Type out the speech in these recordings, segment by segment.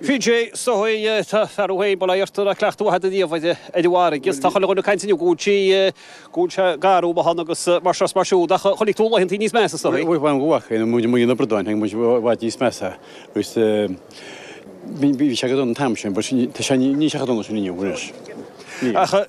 PJ, Seoighe tá fear uaidh ag baile Aortar a' cleachtadh a thada riamh ar ar an bhfarraige is tá chuile dhuine ag caint inniu go bhfuil sí, go bhfuil sé garbh amuigh ann agus mar seo is mar siúd ach chonaic tú laethanta níos measa sa, Bhuel bhain go mhaith é, muid muid ag na bradáin chonaic muid i bhfad níos measa agus bhí bhí sé go dona an t-am sin but tá sé, níl sé chomh dona sin inniu anois. Níl. Ach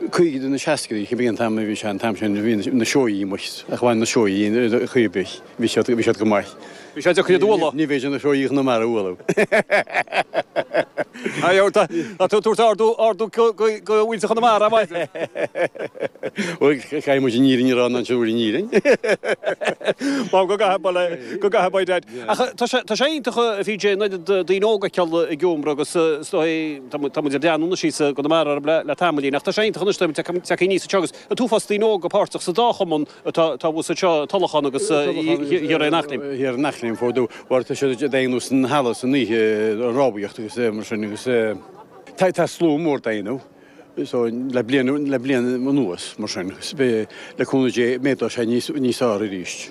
Caogaidí nó seascaidí, cibé an t-am a bhí sé an t-am sin, bhí na Seoighí amuigh, ach bhain na Seoighí in do chroí ar bith. Bhí siad, bhí siad go maith. Bhí sé deacair iad a bhualadh. Ní féidir na Seoighí Chonamara a bhualadh. Tá tú ag tabhairt ardú, ardú do mhuintir Chonamara, a Mháire. Bhuel, caithfidh muid an fhírinne a rá, an ansin a bhfuil an fhírinne? M'anam go gcaithfidh, bhuel, go gcaithfidh, by dad. Ach tá sé, tá sé iontach, a PJ, an oiread daoine óga ag goil ag iomramh agus is dóigh, Tá muid beagáinín síos i gConamara le tamaillín, ach tá sé iontach anois dóibh a bheith ag teacht aníos anseo agus an t-uafás daoine óga páirteach sa dá chumann atá abhus anseo, Tulachán agus thiar ar an Eachléim. Thiar ar an Eachléim ar ndó, mar tá siad ag déanamh san halla san oíche, an rámhaíocht agus é mar sin agus tá slua mór dhá dhéanamh so le bliain le bliain anuas mar sin, le cúnamh Dé méadóidh sé níos níos fearr arís.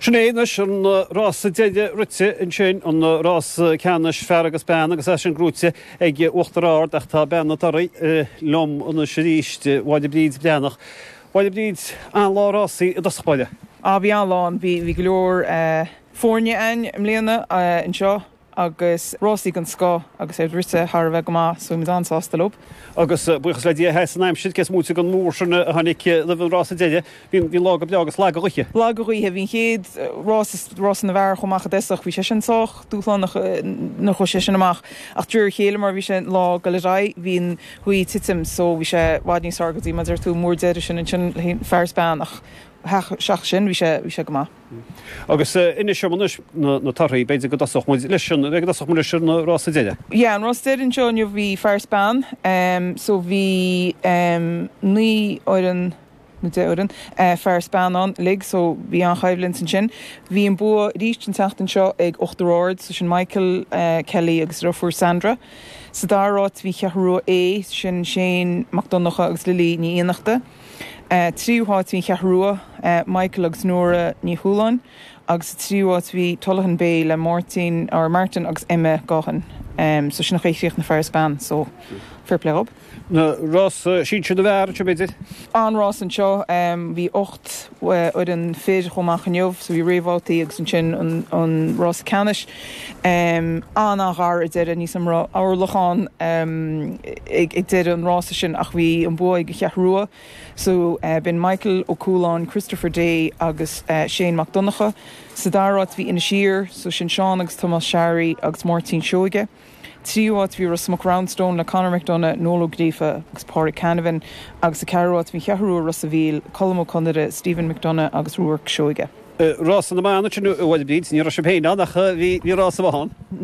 Sin é anois an rása deiridh rite ansin, an rása ceannais fear agus bean agus é sin gnóite ag Uachtar Ard, ach tá bean na dtorthaí liom anois arís, Máire Bríd Breathnach. A Mháire Bríd, an-lá rásaí i dtosach báire. Á bhí an-lá ann, bhí go leor foirne ann i mbliana anseo. Agus rásaí den scoth agus iad rite thar a bheith go maith, so bhí muid an-sásta leo. Agus buíochas le Dia sheas an aimsir, cé is móite den mhúr sin a tháinig roimh an rása deiridh. Bhí an lá go breá agus lag an ghaoth. Lag an ghaoth. Bhí an chéad rás, rása na bhfear, chuaigh amach i dtoiseach. Bhí sé sin sách dúshlánach nuair a chuaigh sé sin amach. Ach de réir a chéile mar a bhí an lá ag dul ar aghaidh, bhí an ghaoth ag titim so bhí sé i bhfad níos fearr go dtí, mar a deir tú, an múr deiridh sin, ansin, féin, fear is bean. Ach ach sin, bhí sé, bhí sé go maith. Agus inis dom anois na torthaí, b'fhéidir go dtosódh muid leis sin, b'fhéidir go dtosódh muid leis an rása deiridh. Yeah, an rása deiridh anseo inniu bhí fear is bean, so bhí naoi fhoireann nó deich fhoireann fear is bean ann uilig, so bhí an-choimhlint ansin. Bhí an bua arís an tseachtain seo ag Uachtar Ard, so sin Michael Kelly agus a dheirfiúr Sandra. Sa dara háit bhí An Cheathrú Rua A, sin Shane Mac Donnacha agus Lily Ní Fhiannachta. tríú háit bhí An Cheathrú Rua, Michael agus Nora Ní Chualáin, agus sa tríú háit bhí Tullaghan Bay le Máirtín, or Martin agus Emma Gaughan. So sin a chríochnaigh na fear is bean, so fair play dhób. Na rása sinsir na bhfear anseo b'fhéidir? An-rás anseo, bhí ocht fhoireann fir chomh maith inniu, so bhí réamhbhabhtaí agus ansin an rása ceannais. an-ghar ag deireadh ní raibh mórán achair ag deireadh an rása sin ach bhí an bua ag an Cheathrú Rua so b'in Michael Ó Cualáin, Christopher Day agus Shane McDonagh. Sa dara áit bhí Inis Oírr so sin Seán agus Tomás Searraí agus Máirtín Seoige. tríú áit bhí Ros Muc Roundstone le Conor McDonagh, Noel Ó Gríofa agus Pauric Canavan agus sa cheathrú áit bhí an Cheathrú Rua Ros a' Mhíl, Colm Ó Conaire, Stephen McDonagh agus Ruairc Seoige. Rás na mban ansin bhuel a Bhríd, ní raibh sibh féin ann ach bhí rás amháin ann.